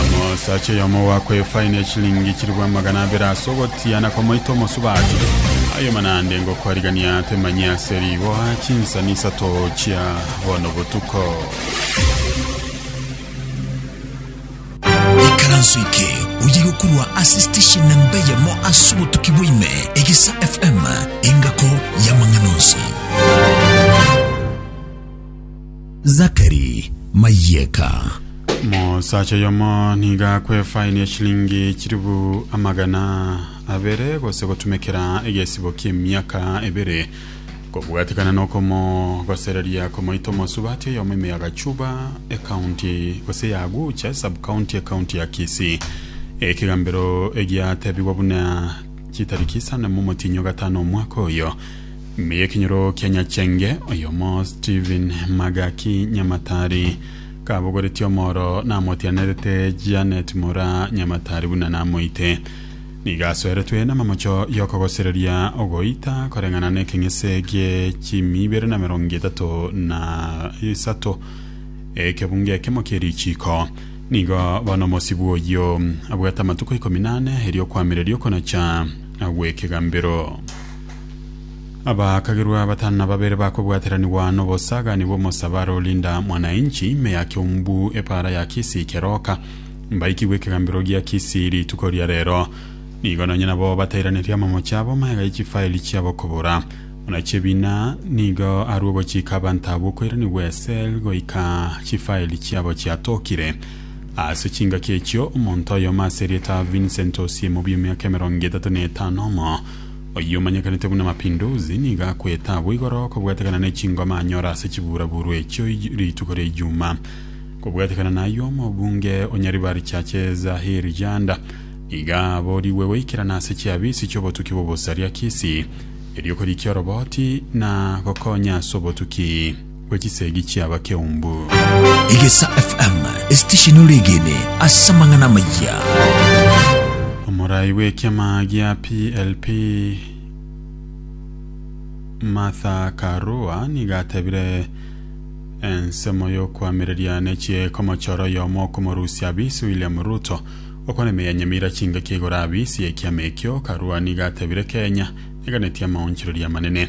Omosacha oyomo ogoakwa efaini ya chilingi chilifu amagana abere ase ogotia na komoita omosubati, aye naende ngokoarigania temanyie ase riboa chinsani isato chia bono botuko. Ikaranso eke oye gokorwa ase station namba eyemo ase obotuki bwaime egesa FM engako y'amang'ana onsi. Zakari, Mayieka. Mosacha oyomo niga akwe efaini ya shilingi chiribu amagana abere gose gotumekera egesibo ki'emiaka ebere kobwatekana nokomo gosereria komoita omosubati oyomo ime ya Gachuba ekaunti gose ya Agucha subcounty ekaunti ya Kisii ekegambero egiatebigwa buna chitariki isano momotinyo gatano omwaka oyo Mbuya ekinyoro kia Nyachenge, oyomo Stephen Magaki Nyamatari kabogoretie omoro namotianerete Janet Mura Nyamatari buna namoite. Nigo asoeretwe namamocho y'okogosereria ogoita koreng'ana n'ekeng'ese gie chimi ibere na merongo etato na isato ekebunga ekemo kie richiko. Nigo bono omosibwa oyio abwate amatuko ikomi nane erio kwamereria okonacha gw'ekegambero. Abaakagerwa batano na babere bakobwateranigwa n'obosaaganigwa omosabare o Linda Mwananchi ime ya Kiombu epaara ya Kisii Keroka mbaikigwe ekegambero gia Kisii rituko ria rero. Nigo nonye nabo batairaneria amamoche abo magega ye chifaeli chiabo kobora. Buna Chebina nigo arue ogochika abanto abwo koiranigwa esel goika chifaeli chiabo chiatokire. Ase chingaki echio omonto oyomo ase erieta Vincent Osiemo bw'emiaka emerongo etato na etano omo Oyio omanyekanete buna Mapinduzi nigo akwete abwo igoro kobwatekana ne chingoma anyora ase chiburaburu echio rituko ria Ijumaa. Kobwatekana nayio omobunge o Nyaribari Churches Ahir Janda nigo aborigwe goikerana ase chiabisi chiobotuki bw'obosaria Kisii erio korikia oroboti na gokonya ase obotuki. bwe chisegi chi'abakeumbu. Egesa FM, esitesheni ore egene ase amang'ana amayia. Omorai bw'ekiama gia PLP Martha Karua niga atebire ensemo y'okoamereria n'echiekomochora oyomo okomorusia abisi William Ruto okwana emeyanyemira chingaki igoro abisi ekiama ekio. Karua niga atebire Kenya eganetie amaonchoreria amanene.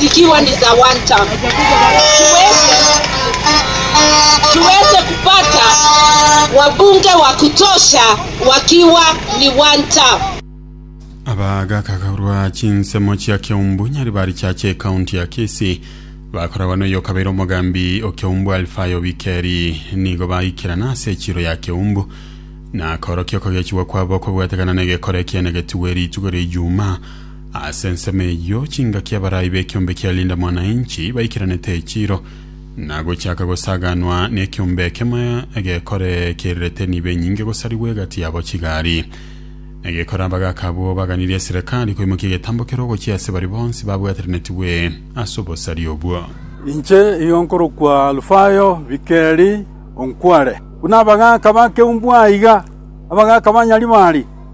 zikiwa ni za one term, tuweze, tuweze kupata wabunge wa kutosha wakiwa ni one term. abagakakarwa chinsemo chia keumbu nyari bari chache ekaunti ya kisi bakoragwa noyo kabeire omogambi okeumbu alfayo bikeri nigo baikerana ase echiro ya keumbu na korokia okogechigwa kwabo kobwatekana na egekora ekiene getigwe rituko ria ijuma Ase ensemo eyio chingaki abarai b'ekiombe kia Linda Mwananchi baikeranete echiro, na gochaka gosaganwa nekiombe ekemo egekore kirirete nibo enyinge gosarigwa egati yabo chigari. Egekore abagaaka abwo baganirie eserekari koimokia egetambo kere ogochia ase baria bonsi babwateranetigwe ase obosari obwo. Inche igo nkorokwa Alufayo, bikeri onkware. Buna abagaaka ba Keumbu aiga, abagaaka ba Nyaribari,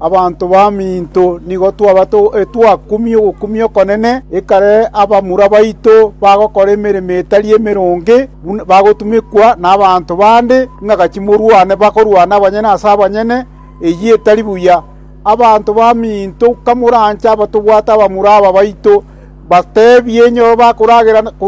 Abanto baminto nigo twabate etwakumia ogokumia okonene, ekare abamura baito bagokora emeremo etari emeronge, bagotumekwa nabanto bande ng'a gachi morwane, bakorwana abanyene ase abanyene, eyio etari buya. Abanto baminto kamoranche abatobwate abamura aba baito, bateebie enyoro bakoragera.